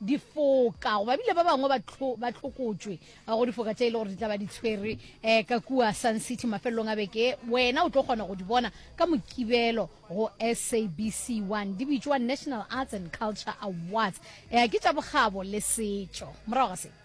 difoka goba bile ba bangwe ba tlhokotšwe go difoka tse e le gore di tla ba di tshwerwe um ka kua sun city mafelelong a beke wena o tlo kgona go di bona ka mokibelo go sabc one di bitšwa national arts and culture awards um ke tša bokgabo le setšo morago ga se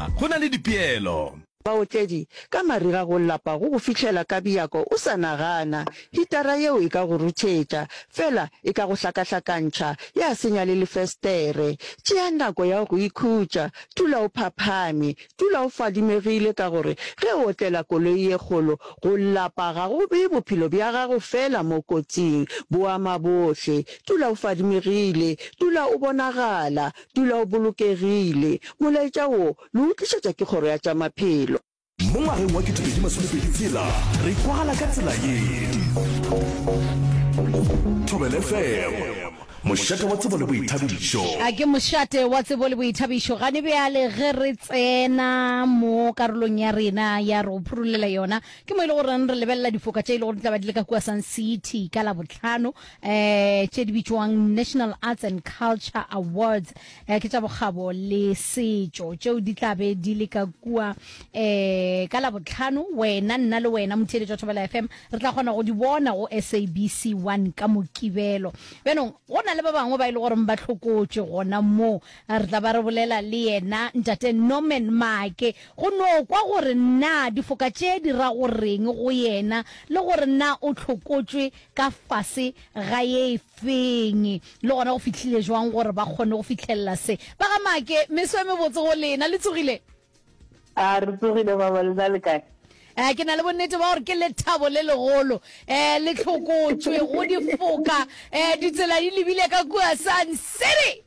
go na le dipeelo. Baotledi, ka mariga go lapa go go fihlela ka bjako o sa nagana. Hitara yeo e ka go ruthetša, fela e ka go hlakahlakantšha, ya senya le lefestere. Tšea nako ya go ikhutša, dula o phaphame, dula o fadimegile ka gore ge o otlela koloi ye kgolo, go lapa ga go bee bophelo bja gago feela mo kotsing, bo ama bohle. Dula o fadimegile, dula o bonagala, Dula o bolokegile. Molaetša wo le o tlišetšwa ke Kgoro ya tša Maphelo. Mo ngwageng wa 2020 tshela re kwagala ka tsela ye. Thobela FM, mošate wa tsebo le boithabišo. A ke mošate wa tsebo le boithabišo gane bjale ge re tsena mo karolong ya rena ya re go phurulela yona ke mo e le goreng re lebelela difoka tše e le gore di tla ba di le ka kua Sun City ka Labohlano um tše di bitšwang National Arts and Culture Awards um ke tša bokgabo le setšo tšeo di tla be di le ka kua um ka labotlhano wena nna le wena motheeletši wa thobela fm re tla kgona go di bona go sabc one ka mokibelo bjanong go na le ba bangwe ba e le goreng ba tlhokotše gona moo re tla ba re bolela le yena ntate norman make go no kwa gore na difoka tše di ra goreng go yena le gore na o tlhokotšwe ka fase ga ye e feng, le gona go fihlile jwang gore ba kgone go fitlhelela se. Ba ga Make, meso e mebotse go lena, le tsogile? A re tsogile baba, le na le kae? Eh, ke na le bonnete ba gore ke lethabo le legolo eh le tlhokotšwe go difoka eh ditsela di lebile ka kua Sun City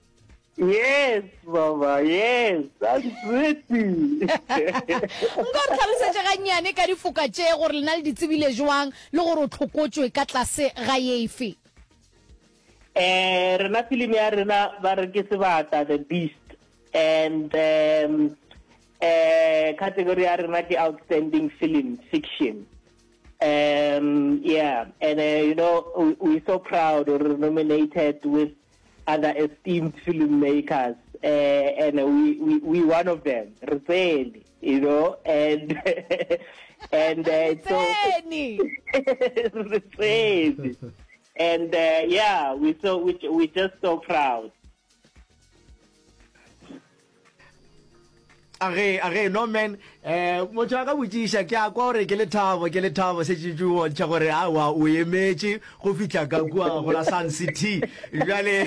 Yes, baba, yes, that's pretty. Nka re tlhalosetše gannyane ka difoka tše gore lena le di tsebile jwang le gore o tlhokotšwe ka tlase ga efe. Eh, rena film ya rena ba re ke sebata the beast and um, eh category ya rena ke outstanding film fiction. Um, yeah, and uh, you know, we, we're so proud or nominated with other esteemed film makers uh, and we, we we one of them re tsene you know and and uh, so re tsene and uh, yeah we so we, we just so proud age age no man eh motho a ka botšiša ke a kwa gore ke lethabo ke lethabo se tšitši o bontšha gore awa o emetše go fitlha ka kua go la sun city jale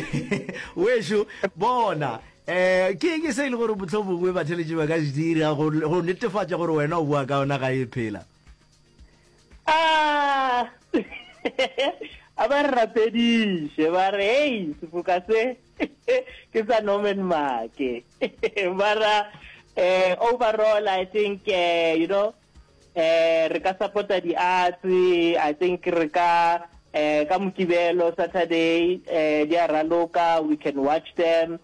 wešo bona eh ke ke se e le gore botlho bongwe batheletši ba ka se dira go go netefatša gore wena o bua ka ona ga e phela Ah! a ba re rapediše ba re hei sefoka se ke sa norman make ba ra um overall i think uh, you know um re ka supporta di-arts i think re ka um ka mokibelo saturday um di a raloka we can watch them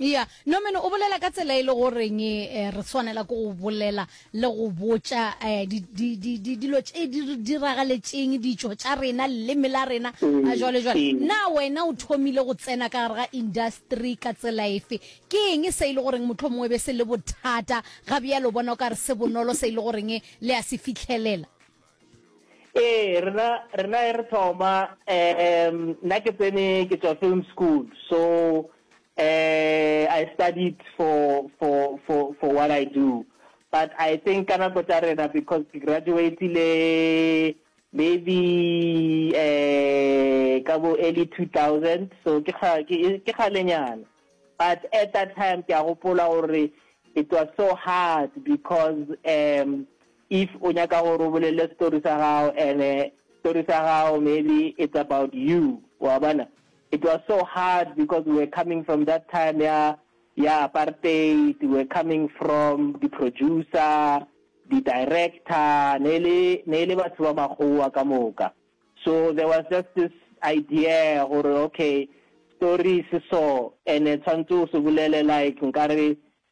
ya norman o bolela ka tsela e le goreng eh, re swanela ke go bolela le go botša eh, dilo tše di re diragaletšeng ditšo tša rena leleme la rena a mm, jwale jwale mm. na wena o thomile go tsena ka gare ga industry ka tsela efe ke eng se e le goreng motlho mongwe be se le bothata ga bjalo bona o ka re se bonolo se e le goreng le ya se fitlhelela Ee, rena rena e re thoma um nna ke tsene ke tswa film school so uh, I studied for for for for what I do but I think ka nako tsa rena because ke graduatile maybe uh ka bo early 2000 so ke ga ke galenyana but at that time ke a gopola gore it was so hard because um If o nyaka gore o bolele story sa gago ene story sa gago maybe it's about you wa bona it was so hard because we were coming from that time ya ya apartheid we were coming from the producer the director ne le ne le batho ba makgowa ka moka so there was just this idea gore okay story se so ene tshwantse o se bolele like nkare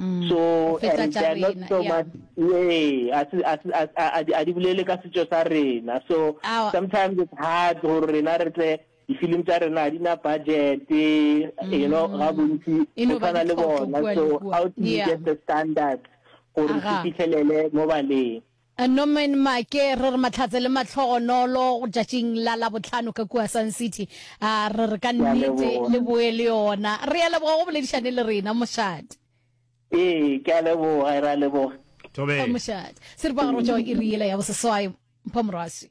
Mm. so Go feta and tša they're not rena, so yeah. much ee a se- a se- a- a- a di- a di bolele ka setšo sa rena so Awa. sometimes it's hard gore rena re tle di-film tša rena ga di na budget you know ga bontsi Mm. E no go ba tshwana le ditlhoko bona kua le so kua. how do you Yeah. get the standards gore Aga. se fitlhelele mo baleng Norman Maake, Re re mahlatse le mahlogonolo tšatšing la Labohlano ka kua Sun City. A re re ka nnete le boe le yona. Re a leboga go boledišane le rena, mošate. Ee, ke a leboga, re a leboga. Thobela. Mošate. Seripagare o tšwa iri yela ya boseswai, Mpho Morwasi.